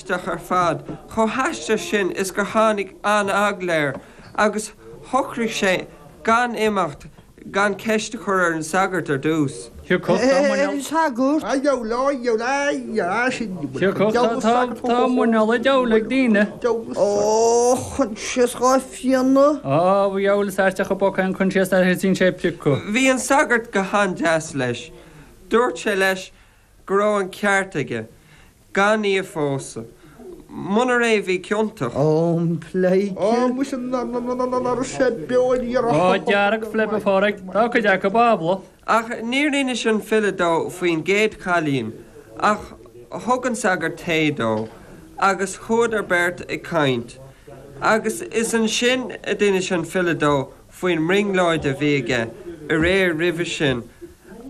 aisteach ar fad, chomh haisteach sin is gur tháinig an-eagla air agus shocraigh sé gan imeacht gan ceist a chur ar an sagart ar dtús. Thiocfadh dá muineál a dealbh ag daoine. Ámh, bhí eolas aisteach i bpóca an choinsiasa a thiteann sé chucu. Bhí an sagart go han-deas leis. Dúirt sé leis go raibh an ceart aige. gan í a phósadh. Munar é a bhí ciontach. Am pleidhce. Á muise ná raibh sé beo aniar! Dhá dearg phleib a Phádraig, tá cuid acu bámhla. Ach níor inis an file dó faoin gcéad chailín ach thug an sagart tae dó agus chuadar beirt ag caint agus is ansin a d'inis an file dó faoin mbrionglóid a bhí aige aréir roimhe sin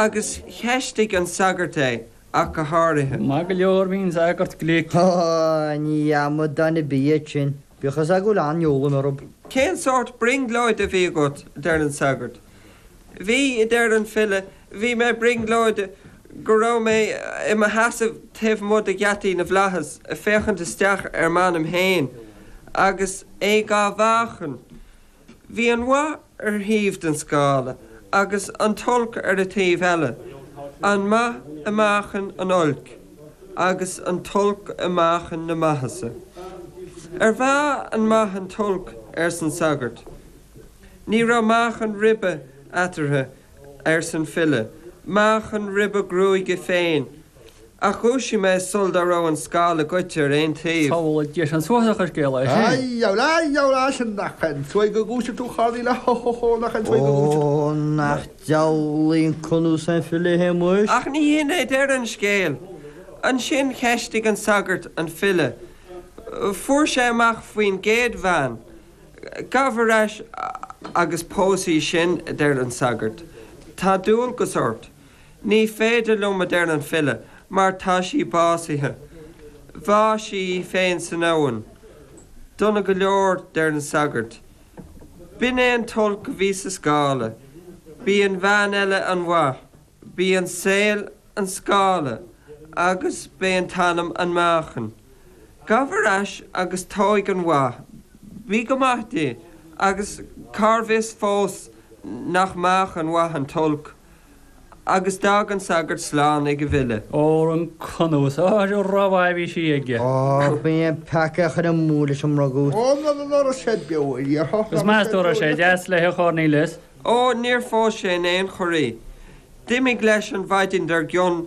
agus cheistigh an sagart é ach go háirithe. Maith go leor, bhí an sagart glic. Ó, ní amadán ar bith iad sin. Bíodh a fhios agat a bhfuil an ola orthub. Cén sórt brionglóide a bhí agat? a deir an sagart. Bhí, a deir an file, bhí mé ag brionglóide go raibh mé i mo sheasamh taobh amuigh de gheataí na bhflaitheas ag féachaint isteach ar m'anam féin agus é dhá mheáchan. Bhí an mhaith ar thaobh den scála agus an t-olc ar an taobh eile, an mhaith ag meáchan an oilc agus an t-olc ag meáchan na maitheasa. Ar mheáigh an mhaith an t-olc? arsan sagart. Ní raibh meáchan ribe eatarthu, arsan file, meáchan ribe gruaige féin Ach dhúisigh mé sul dá raibh an scála goite ar aon taobh. Seol i dteis an suaitheadh ar scéal é sin. Oh, nach diabhlaí an cunús é an file féin muis! Ach ní shin é deireadh an scéil. Ansin cheistigh an sagart an file. Fuair sé amach faoin gcéad bhean. Gabh ar ais agus pós í sin, a deir an sagart. Tá dualgas ort. Ní féidir liom, a deir an file, mar tá sí básaithe. Bháigh sí í féin san abhainn. Dona go leor, deir an sagart. B'in é an t-olc a bhí sa scála. B'í an bhean eile an mhaith. B'í an saol an scála agus b'é an t-anam an meáchan. Gabh ar ais agus tóig an mhaith. Bí go maith di, agus cár bhfios fós nach meáfadh an mhaith an t-olc. Agus d'fhág an sagart slán ag an bhfile. Óra an cunús, ó is rómhaith a bhí sí aige. Ach b'in é an peaca í a chur amú leis an mbrogús. Ó, ná ná ná raibh sé beo a dhéarfadh, Meas tú an raibh sé deas léi a Chornelius. Ó, níor phós sé in aon chor í. D'imigh leis an mhaidin dar gcionn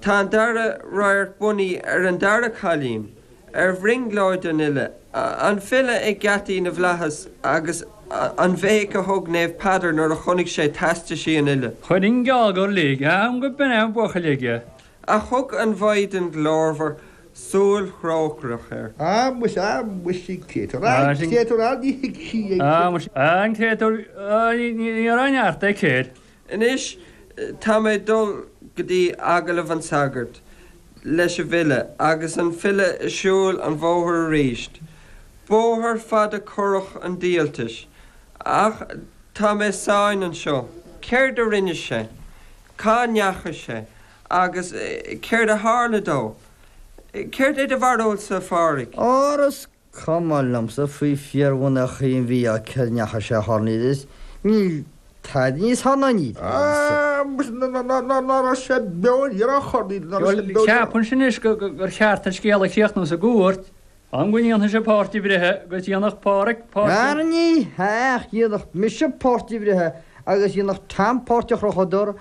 Tá an dara radharc bunaithe ar an dara cailín ar bhrionglóid an fhile, an file ag geataí na bhflaitheas agus an bhéic a thug Naomh Peadar nuair a chonaic sé teastaisí an fhile. Chuir an gealg ar lí a ham go mbeinn am buachaill aige. Ach thug an mhaighdean ghlórmhar súil thrócaireach air. Á, muise, á, muise, an créatúr, á, an créatúr, á, ní thuig sí é. Á, muise, á, an créatúr, á, ní raibh neart aici air. Anois tá mé ag dul go dtí agallamh an tsagairt leis an bhfile agus an file ag siúl an bhóthair arís. Bóthar fada corrach an díoltais, ach tá mé i sáinn anseo. Céard a rinne sé? Cá ndeachaigh sé? Agus céard a tharla dó? Céard é do bharúilsa, a Pháraic? Áras Chomh maith liomsa, faoi fíor-bhunadh an mhí-ádh ceirníneach is ea Hornidis, níl tada níos hornáidí dá bhfuil sa. Ceapann sé anois gur cheart an scéal a chríochnú sa gcúirt, am go ndéanfadh sé páirt an bhreithimh agus dhéanfadh Páraic páirt an aturnae! Ach dhéanfadh mise páirt an bhreithimh agus dhéanfadh Tom páirt an chrochadóra,